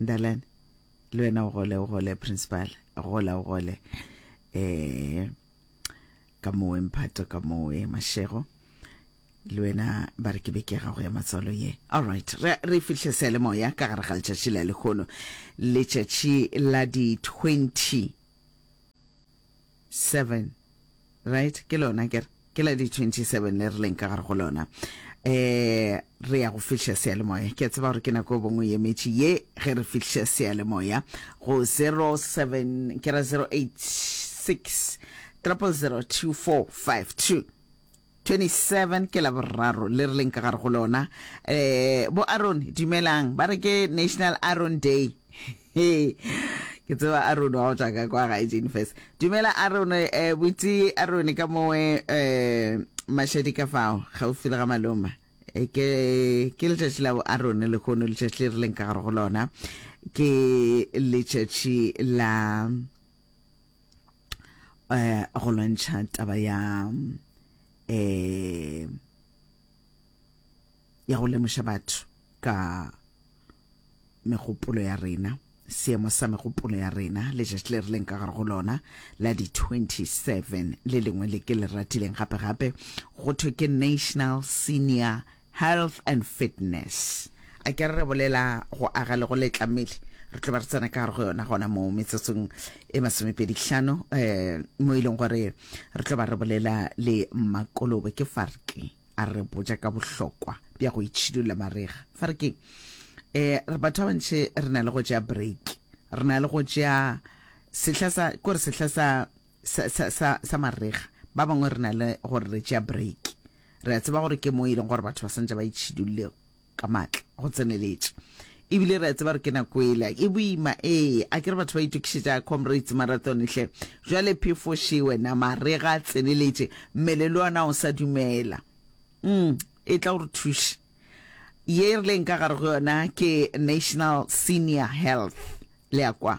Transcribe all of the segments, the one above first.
Ndalane le wena o gole o gole principal a gola o gole eh ka mowe mphato ka mowe mashego le wena ba re ke be ke gago ya matswalo ye all right re, re fihle sele moya ka gare ga letšatši la lekgono letšatši la di 20 seven right ke lona kere ke la di 27 le re leng ka gare go lona um re ya go fihla seyalemoya ke a tseba gore ke nako e bongwe emetše ye ge re fihla seyalemoya go 07 ke ra 086 000245 27 ke laboraro le re leng ka gare go lona eh bo Aaron dumelang ba re ke National Aaron Day ke tseba Aaron wa go tla ka kwa ga Jane first dumela Aaron eh butsi Aaron ka mowe eh mashadi ka fao gaufi le ga maloma eh, ke ke letšatši la bo Aaron le kono letšatši le re leng ka gare go lona ke letšatši la eh, go lwantšha taba ya eh, ya go lemoša batho ka megopolo ya rena seemo sa megopolo ya rena letšatši le re leng ka gare go lona la di-27 le lengwe le ke le ratileng gape-gape go thwe ke national senior Health and fitness. A ke re re bolela go aga le go letla mmele, re tlo ba re tsena ka gare go yona gona mo metsotsong e masomepedi hlano um mo e leng gore re tlo ba re bolela le mmakolobe ke farke a re botja ka bohlokwa bja go itšhidulla marega farke um batho ba bantši re na le go tšea break re na le go tšea sehla sa kore sehla sa sa, sa, sa, sa marega. Ba bangwe re na le gore re tšea break. Re a tseba gore ke moo e leng gore batho ba santse ba itšhidulle ka matla go tseneletše, ebile re a tseba gore ke nako ela e boima. Ee, a ke re batho ba itokišetša Comrades Marathon hle. Bjale phefoše wena, marega a tseneletše, mmele le ona o sa dumela. Mm, e tla o re thuše. Ye e rileng ka gare go yona ke National Senior Health. Le a kwa?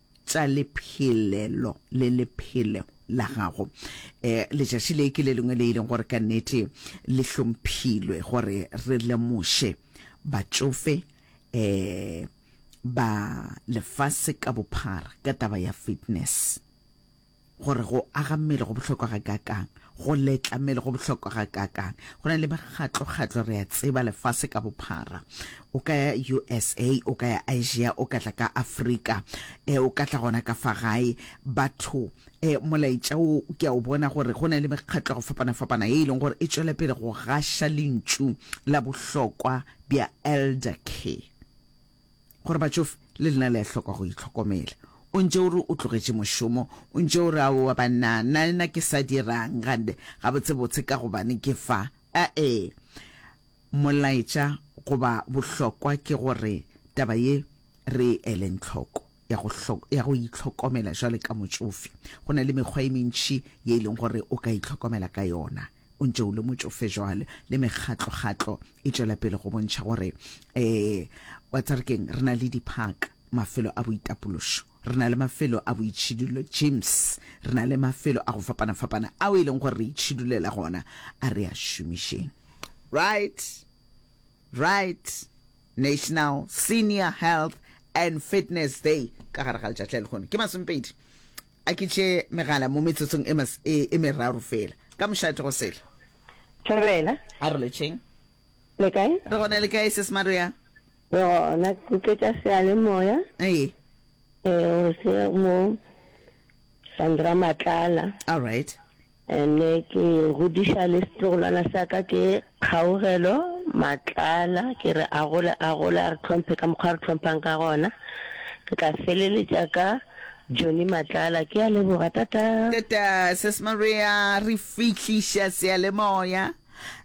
tša lephelelo le lephelo la gago. E, letšatši le ke le lengwe le e leng gore ka nnete le hlomphilwe gore re lemoše batšofe e, ba lefase ka bophara ka taba ya fitness. gore go aga mmele go bohlokwa ga kakang, go letla mmele go bohlokwa ga kakang. Go na le makgatlo-kgatlo, re a tseba, lefase ka bophara. O ka ya USA, o ka ya Asia, o ka tla ka Afrika, eh, o ka tla gona ka fa gae. Batho, eh, molaetša wo ke a o bona gore go na le mekgatlo go fapana-fapana ye e leng gore e tšwele pele go gaša lentšu la bohlokwa bja elder care. Gore batšofe le lena le a hloka go itlhokomela. O ntše o re o tlogetše mošomo, o ntše o re aowa banna, na nna ke sa dira'ng gande? Gabotsebotse ka gobane ke fa. A-e. Molaetša goba bohlokwa ke gore taba ye re e eleng tlhoko, ya go, ya go itlhokomela jwale ka motšofe. Go na le mekgwa e mentši ye e leng gore o ka itlhokomela ka yona. o ntše o le motšofe jwale, le mekgatlo-kgatlo e tšwela pele go bontšha gore, ee, wa tseba re keng, re na le di-park, mafelo a boitapološo, re na le mafelo a boitšhidulo, gyms, re na le mafelo a go fapana-fapana ao e leng gore re itšhidulela gona, a re a šomišeng. Right? Right? National Senior Health and Fitness Day ka gare ga letšatši la lekgono ke masomepedi a ke tše megala mo metsotsong e, e, e meraro fela ka mošate go sehla Thabela a re letšeng le kae re gona le kae se semato ya re gona ke tletša sealemoya ee ee gore se mo Sandra Matlala all right Ne ke godiša le setlogolwana sa ka ke Kgaugelo Matlala, ke re a gole a gole, a re tlhomphe ka mokgwa a re tlhomphang ka gona. Ke tla feleletša ka Johnny Matlala. Ke a leboga, tata. Tata Sis Maria, re fihliša seyalemoya,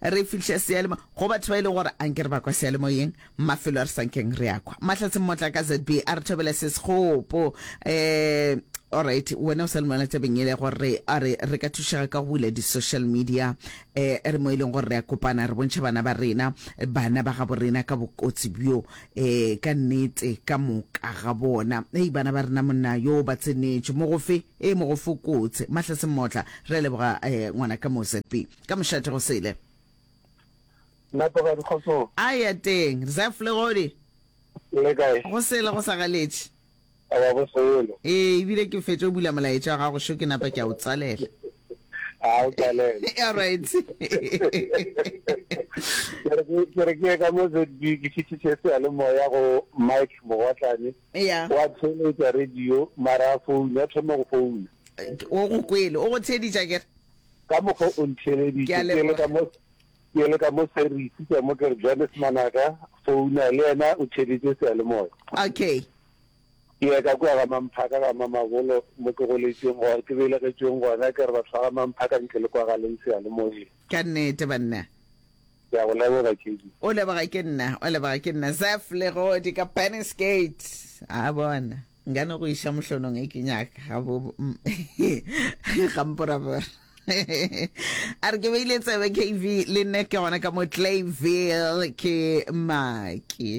re fihliša seyalemoya go batho ba e leng gore a nke re ba kwa seyalemoyeng. Mafelo a re sa nkeng re a kwa. Mahlatse Mmotla ka ZB a re thobela se sekgopo. Eh, alright, wena o sa lumela tabeng ele gore a re re ka thušega ka go bula di-social media eh, re mo e leng gore re a kopana re bontšha bana ba rena bana ba gabo rena ka bokotsi bjo eh, ka nnete ka moka ga bona ei bana ba rena monna yo ba tsenetše mo gofe e mo go fokotse Mahlatse Mmotla re a leboga eh, ngwana ka mo ZB ka mošate go sele Napa ba di kgotsong. A ya teng. Reserve le godi. Le kae. Go sele go sa galetše. A ba go sele. Ee, ebile ke fetše o bula molaetša wa gago šo ke napa ke a o tswalela. A o tswalela. All right. Ke re ke ke re ke ka mo ZB ke fitise se ya le moya go Mike Mogotlane. Eya. Wa tsheletsa radio mara phone ya thoma go phone. O go kwele, o go theeditša ke re. Ka mokgwa o ntheeleditše ke le ka mo. Bjale ka mo se re ikutlwa mo ke re bjale semanaka founa le yena o theeditše seyalemoya. Okay. Ke ya ka kua ga Mamphaka ga Mamabolo mo ke goletšeng gore ke belegetšweng gona ke re batho ba ga Mamphaka nke le kwa galeng seyalemoyeng. Ka nnete banna. Ke a go leboga Kedi. O leboga ke nna, o leboga ke nna. Zeph Legodi ka Bannisgate. A bona. Nka no go iša mohlonong e ke nyaka ga bo gamporabora. a re ke beile tsebe kv le nne ke gona ka mo clayville ke maki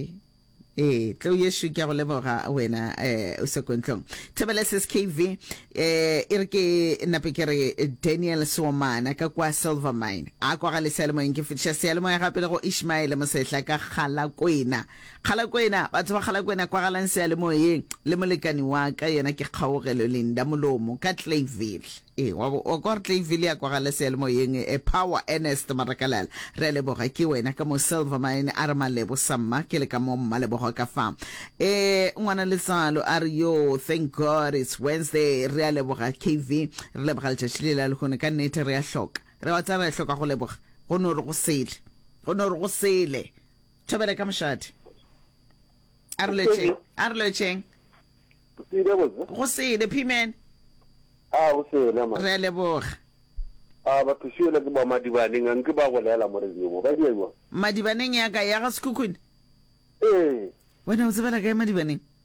ee tlo yesu ke go leboga wena um o sekontlong thebeleses kv um e re ke nape ke re daniel somana ka kwa silver mine a kwa ga leseyalemoyeng ke fetiša seyalemoya gape le go ishmaele mosehla ka gala kwena Kgalakwena, batho ba Kgalakwena kwagalang seyalemoyeng, le molekani wa ka, yena ke Kgaogelo Linda Molomo ka Clayville. Ee, wa bo, wa kwa gore Clayville ya kwagala seyalemoyeng, e, Power Ernest Marakalala, re a leboga, ke wena ka mo Silver Mine, a re Malebo Samma, ke le ka mo Mmalebogo ka fa. Ee, Ngwana Letsalo a re, Yoo, thank God it's Wednesday, re a leboga KV, re leboga letšatši le la lehono, ka nnete re a hloka, re a tsa re a hloka go leboga, go no re go sele, go no re go sele, thobele ka mošate a re lwetšeng a re lwetšeng Sile botse. go sele phimene A go sele ma. re a leboga A ba thusiele ke ba madibaneng anke ba go lela mo re dimo. Ba dia jwa. madibaneng ya ka ya ga sekhukhune Eh. wena o tsebela kae madibaneng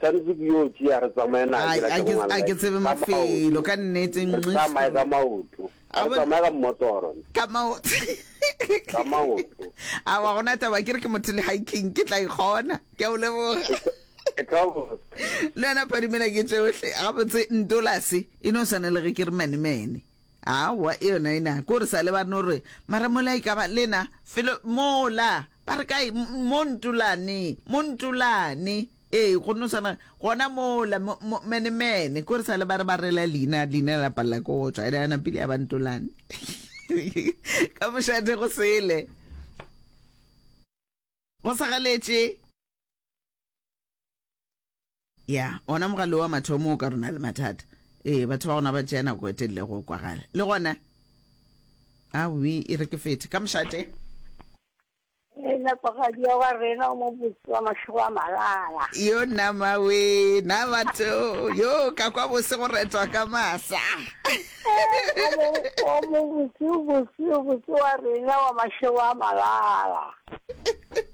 Swanetse ke yo tšea re tsamaye na ke la ke ngwana. A ke tsebe mafelo ka nnete. Re tsamaye ka maoto. Re tsamaye ka mmotoro. Ka maoto. Ka maoto. A wa gona taba ke re ke motho le hiking ke tla ikgona. Ke a o leboga. le yona phadimela ke tsohle gabotse ntolase e no swane le ge ke re manemene awa e yona e na ko re sa lebane gore mara mola e ka ba lena felo mola Ba re kae? Mo Ntulane, mo Ntulane. Ee, go no sana gona mola, mo, mo, mene, mene. Ko re sale ba re ba rela leina, leina la palela ko go tswa, ene yana pele ya ba Ntulane. Ka mošate go sele. Go sa galetše. ya ona mogale wa mathomo o ka rona le mathata ee batho ba gona ba tšea nako e telele go kwagala le gona awi e re ke fete ka mošate e napagadi ya wa rena o mobotse wa matlhogo a malala yo nama we na batho yo ka kwa bose go retwa ka masa o mobotse o botse o botse wa rena wa matlhogo a malala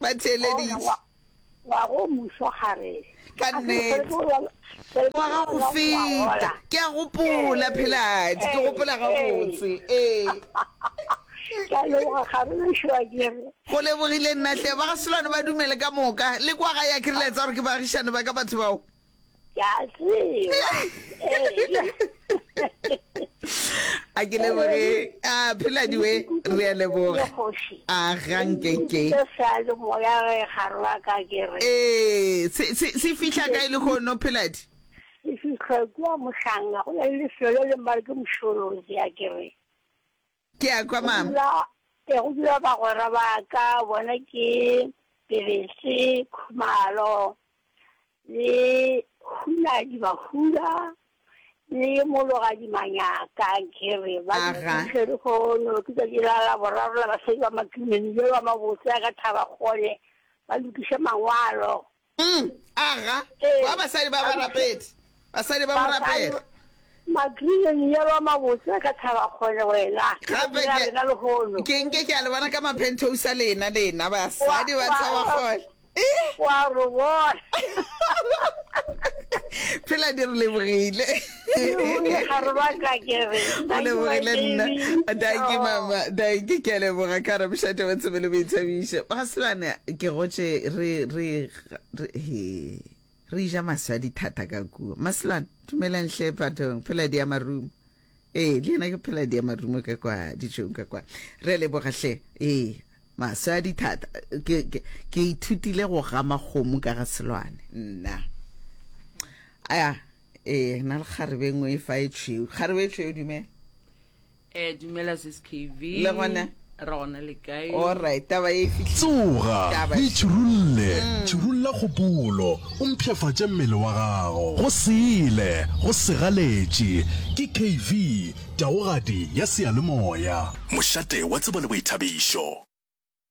Ba theeleditše. Wa go mušo gare. Ka nnete. Wa ga go feta. Ke a gopola, Pheladi. Ke gopola gabotse. Ee. Ke a leboga kgarogišo a kere. Go lebogile nna hle. Ba ga Selwane ba dumele ka moka. Le kwa gae a ke re le a tsaya gore ke baagišane ba ka batho bao. ke a tseba a ke leboge a phela diwe re a leboga a gankeke ee se fitlha ka e le gono pheladi e fitlha kua mohlanga go na le lefelo le mare ke mošoro ke a kere Ke a kwa mama. Ee, go dula bagwera ba ka, bona ke Bebese, Khumalo, le Hunadi Mahuda, le Mologadi Manyaka, ke re ba dutse lehono, ke tšatši la laboraro la basadi ba Matumeni, bjalo ba mabotse a ka Thaba kgole, ba lokiša mangwalo. Umm, aga, Ee, kwa basadi ba ba rapedi, basadi ba go rapela. Magreen yellow a mabotse a ka thaba kgole wena. Gape ke, rena lehono. Ke nke ke a le bona ka mapenthousa lena, lena basadi ba thaba kgole. Wa re bona. Phela di re lebogile. o lebogile nna danki mama danki ke a leboga ka ramošate wa tsebe le boithabiše ga sebane ke gotše re re re- he re ja maswi a dithata ka kuo maselwane dumelang hle phathong pheladi ya marumo ee le yena ke pheladi ya marumo ka kwa dijong ka kwa re a leboga hle ee maswi a dithata ke ke- ke ithutile go gama kgomo ka ga selwane nna aya ee na le kgarebe e nngwe e fa e tšhweu kgarebe e tšhweu dumela eh dumela sis kv le gona ra gona le kae allright taba e fitlhile tsoga Taba e e- tširulle tširulla kgopolo o mpšhafatše mmele wa gago go sele go segaletše ke kv taogadi ya seyalemoya Mošate wa tsebo le boithabišo.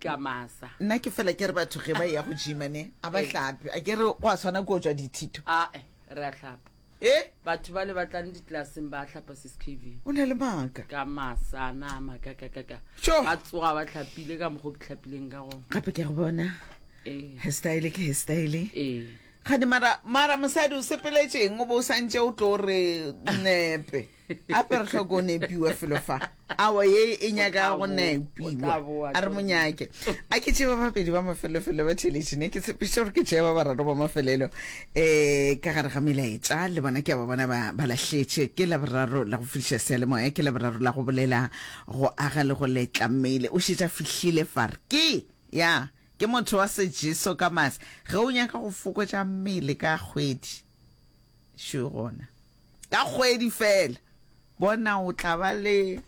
ka masa nna ke fela ke re batho ge ba ya go jima ne a ba hlape a ke re go a tshwana ko tswa dithito ae re a hlapa e batho ba le ba tlang ditlelaseng ba hlapa seskv o na le maaka ka masa na makakakaka Sure. ba tsoga ba tlhapile ka mokgo ke tlhapileng ka gona gape ke a go bona ee hairstyle ke hairstyle ee gane mara mara mosadi o sepeletšeng o bo o santse o tlo re nepe ape re tlhoko o nepiwa felo fa awa ye e nyaka go nepiwa a re monyake a ke tšeba babedi ba mafelofelo ba theletše ne ke tshepiša gore ke tšea ba bararo ba mafelelo um ka gare ga melaetša le bona ke a ba bona ba ba lahletše ke laboraro la go fihliša sealemoya ke laboraro la go bolela go aga le go letla mmele o šetša fihlile far ke ya ke motho wa sejeso ka mase ge o nyaka go fokotša mmele ka kgwedi šo gona ka kgwedi fela bona o tla ba le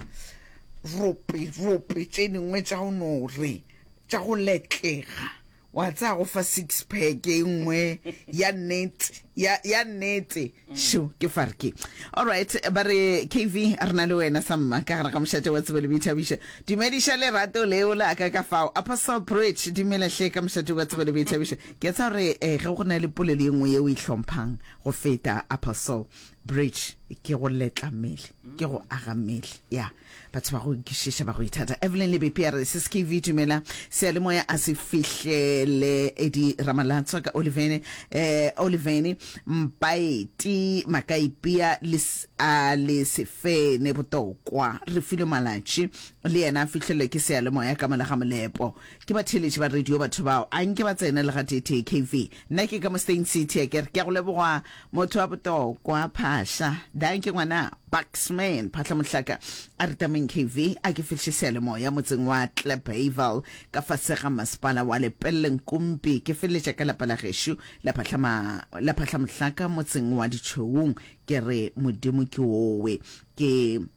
rope rope tše dingwe tša go no re tša go letlega wa tsaya go fa six pack e nngwe ya nnete ya ya nnete šo ke farke all right ba re kv a re na le wena sa mma ka gare ga mošate wa tsebo le boithabišo dumediša lerato leo la ka ka fao apostle bridge dumelahle ka mošate wa tsebo le boithabišo Ke tsa re eh, ge go na le polelo e nngwe ye o e hlomphang go feta Apostle Bridge, ke go letla mmele, ke go aga mmele. Ya, batho ba go kwišiša, ba go ithata. Evelyn Lebepi a re, SSKV, dumela, seyalemoya a se fihlele. Eddie Ramalatswa ka Olivene, eh, Olivene, Mpaeti, Makaipea le s- a le Sefene, Botokwa, Refilwe Malatši, le yena a fihlelwe ke seyalemoya ka mola ga molepo. Ke ba theeletše ba radio batho bao, a nke ba tsene le gateetee KV. Nna ke ka mo Steyn City a ke re, Ke a go leboga motho wa botokwa, Phahla. Dankie ngwana, Buxman, Phahla Mohlaka a re tameng KV, a ke fihliše seyalemoya motseng wa Klapheval ka fase ga masepala wa Lepelle Nkumpi. Ke feleletša ka lapa la gešo la Phahla ma, la Phahla Mohlaka motseng wa Ditšhoung. Ke re Modimo ke owe. Ke.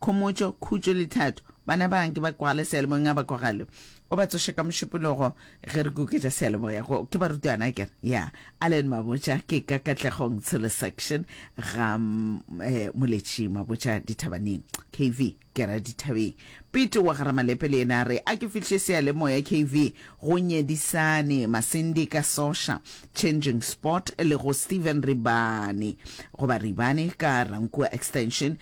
Khomotšo, khutšo le thato. Bana ba nke ba kwagale sealemoyeng a ba kwagale. O ba tsoše ka mošupologo ge re kuketša sealemoya. Go, ke barutwana akere? Ya. Allen Mabotja, Ke ka Katlegong Tshilo Section ga eh, Moletši Mabotja Dithabaneng. KV, Ke ra dithabeng. Pete wa ga Ramalepe le yena a re, A ke fihliše sealemoya KV go Nyedisane, Masindi ka Sosha, Changing Spot le go Stephen Ribane, goba Ribane ka Rankuwa Extension.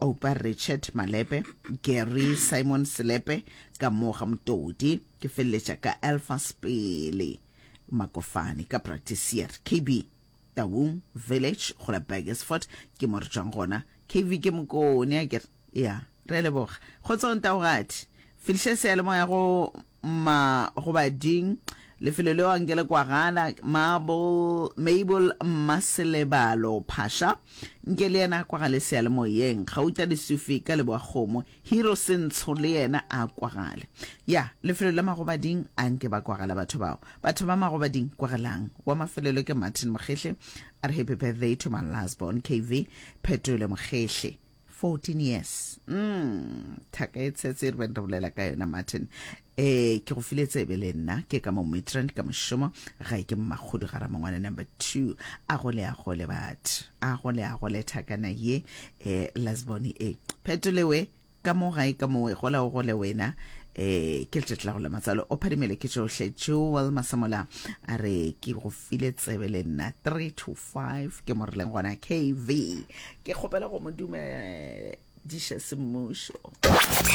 Oupa Richard Malepe, Gary Simon Selepe, ka mo ga Motodi, ke feleletša ka Elfas Pele Makofane ka Bratisier, KB. Taung Village go la Burgersfort ke mo re tšwang gona. KV ke mokone a kere, ya, re a leboga. Kgotsong Taogadi, fihliša seyalemoya go. ma go ba ding lefelo leo anke le kwagala mabel mmaselebalo phasha nke le yena a kwagale sealemoyeng gauta lesufi ka leboa kgomo hero sentsho le yena a kwagale ya lefelo la magobading anke ba kwagala batho bao batho ba magobading kwagalang wa mafelelo ke martin mokgehle a re happy birthday to my last born kv phetole mokgehle 14 years mm, thaka e tshetse re beng re bolela ka yona martin eh ke go file tsebe le nna ke ka mo midrand ka mošomo ga e ke mmakgudu ga ramangwana number two a gole a gole batho a gole a gole thakana ye um lasbone e phetolewe ka mo gae ka mowe gola o gole wena eh ke letšatši la go la matsalo o phadimele ke tšohle joel masamola a re ke go file tsebe le nna 3 to 5 ke mo rileng gona kv ke kgopela go mo dumediša semmušo